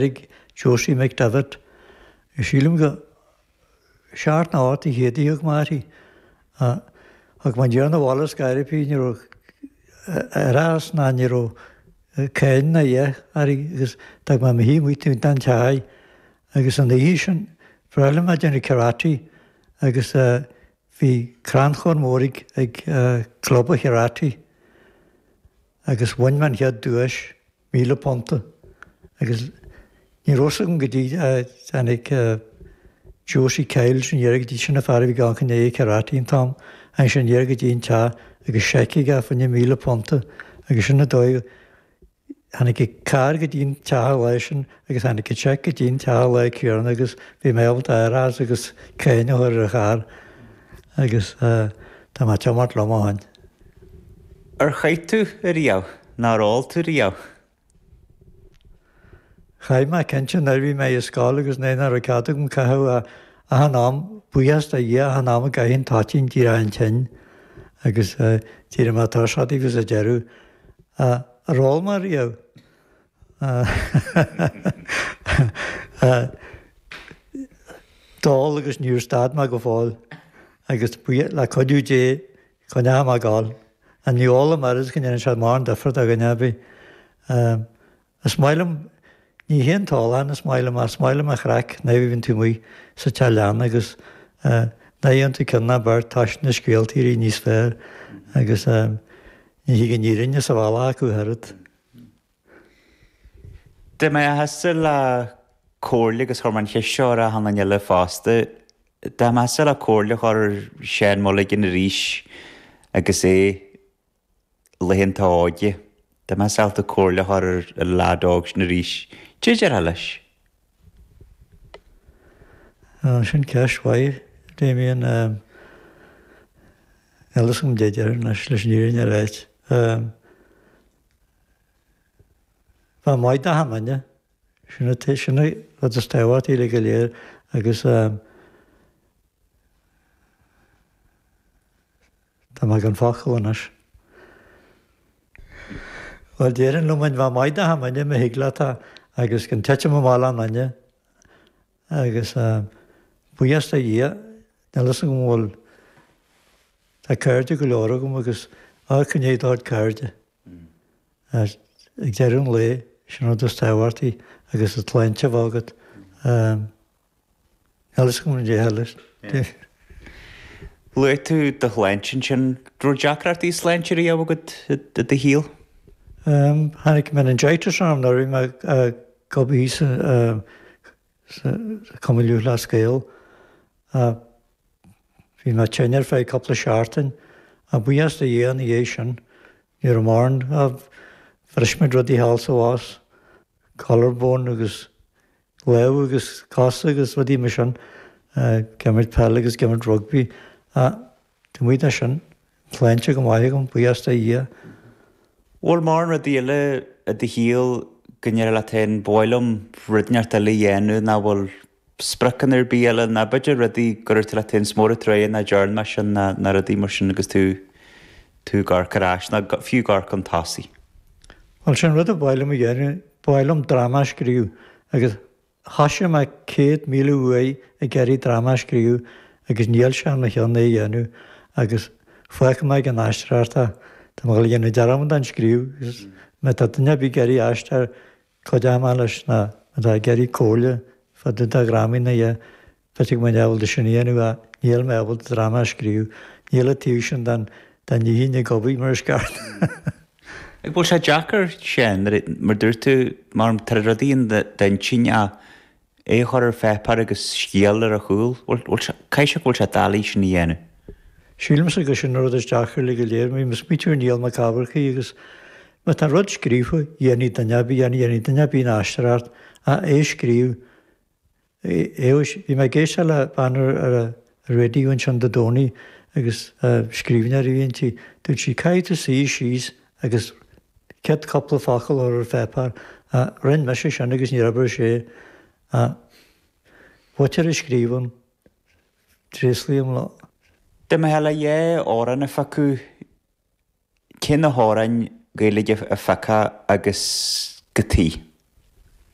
ag Josie McDevitt, Sílim gur seacht nó ocht de chéadtaí a thug mé uirthi thug mé aniar 'na bhaile as gairipí ní raibh árachas ná ní raibh cáin ná a dhath uirthi agus d'fhág mé amuigh í amuigh taobh den teach agus ina dhiaidh sin ba bhreá liom a bheith ag déanamh karate agus bhí crannchur mór ag club karate agus bhain mé an chéad duais. Míle punta. Agus ní raibh fhios agam go dtí go dtáinig Josie Kyle leis aniar go dtí sin an fear a bhí i gceannas ar karate an t-am sin aniar go dtí an teach agus seic aige fá choinne míle punta agus sin an dóigh tháinig an carr go dtí an teach an lá sin agus tháinig an seic go dtí an teach an lá céanna agus bhí mé ábalta árachas agus cáin a chur ar an charr agus tá mé ag tiomáint liom ó shin. Ar chaith tú riamh? Nó ar ól tú riamh? Chaith mé, cinnte, nuair a bhí mé i scoil agus nuair nach raibh cead agam caitheamh achan am. Buíochas do Dhia achan am a gcaithfinn toitín d'éireochainn tinn agus d'éirigh mé tuirseach díofa sa deireadh. Ar ól mé riamh? D'ól agus níor stad mé go fóill agus le cuidiú Dé coinneoidh mé ag gabháil. Ach ní ólaim oiread go ndéanann sé mórán difir do dhuine ar bith. Is maith liom, ní hé an t-ólachán is maith liom ach is maith liom an chraic nuair a bhíonn tú amuigh sa teach leanna agus nuair a dhéanann tú ceann nó beirt tá na scéalta uilig níos fearr agus ní thig an fhírinne sa bhealach acu oiread. Dá mbeifeása le comhairle agus chuir mé an cheist seo ar achan duine eile fosta. Dá mbeifeása le comhairle a chur ar Seán Mulligan arís agus é i laethanta a óige. Dá mbeifeása le comhairle a chur ar an leaid óg sin arís. Caidé a déarfá leis? Sin ceist mhaith, Damien. Ionas go mb'fhéidir leis an fhírinne a bheith ait, ba mhaith dá hiomána. Sin an rud is tábhachtaí le go léir agus. Tá mé gan focal anois. Bhuel, déarfainn liom féin a bheith maith d'achan duine má thig leat agus gan titim amach le aon duine agus buíochas do Dhia, níl 'fhios agam an bhfuil, tá cairde go leor agam agus ádh go ndéidh d'ard cairde ach ag deireadh an lae, sin an rud is tábhachtaí agus an tsláinte a bheith agat. Luaigh tú do shláinte ansin. Raibh deacrachtaí sláinte riamh agat i do shaol? Tháinig meningitis orm nuair a bhí mé ag obair thíos i gCumann Lúthchleas Gael. Bhí mé tinn ar feadh cúpla seachtain ach buíochas do Dhia ina dhiaidh sin ní raibh mórán. Bhris mé rudaí thall is abhus, collarbone agus Lámh agus cos agus rudaí mar sin. Ag imirt peil agus ag imirt rugbaí. Taobh amuigh de sin, sláinte go maith agam, buíochas do Dhia. Bhfuil mórán rudaí eile i do shaol go ndéarfá leat féin, ba mhaith liom rud inteacht eile a dhéanamh, ná bhfuil spriocanna ar bith eile, ná b'fhéidir rudaí go n-úrt tú leat féin, is mór an truaighe nach dearn mé sin ná ná rudaí mar sin agus tú tú ag amharc ar ais ná fiú ag amharc chun tosaigh. Bhuel, sin rud a ba mhaith liom a dhéanamh Ba mhaith liom dráma a scríobh agus chaithfeadh sé mé céad míle uaidh ag iarraidh dráma a scríobh agus níl sé ar mo cheann é a dhéanamh agus fágfaidh mé ag an aisteoireacht é. Tá mé ag dhéanamh dearmad den scríobh agus má tá duine ar bith ag iarraidh aisteoir cuidigh mé leis na atá ag iarraidh comhairle fá dtaobh de dhrámaí na Bheinn ábalta sin a dhéanamh ach níl mé ábalta dráma a scríobh. Níl an taobh sin den inchinn ag obair mar is ceart. An bhfuil sé deacair, Séan, nuair a, mar dúirt tú, mar tá rudaí in d'intinn a, é a chur ar pháipéar agus scéal ar a chúl. Caithfidh sé go bhfuil sé doiligh sin a dhéanamh. Sílimse gur sin an rud is deacra le go léir. Bhí mo smaoitiú ar Niall Mac Eachmharcaigh agus má tá rud scríofa, dhéanfaidh duine ar bith, dhéanfaidh duine ar bith an aisteoireacht ach é a scríobh, A Aodh, bhí mé ag éisteacht le bean ar ar an raidió ansin Dé Domhnaigh agus scríbhneoir a bhí inti. Dúirt sí caithfidh tú suí síos agus céad cúpla focal a chur ar pháipéar. Rinn mise sin agus níor oibir sé. An t-údar a scríobhann, tréaslaím leo. Dá mbeifeá le dhá amhrán a phiocadh, cé na hamhráin Ghaeilge a phiocfá agus cad chuige?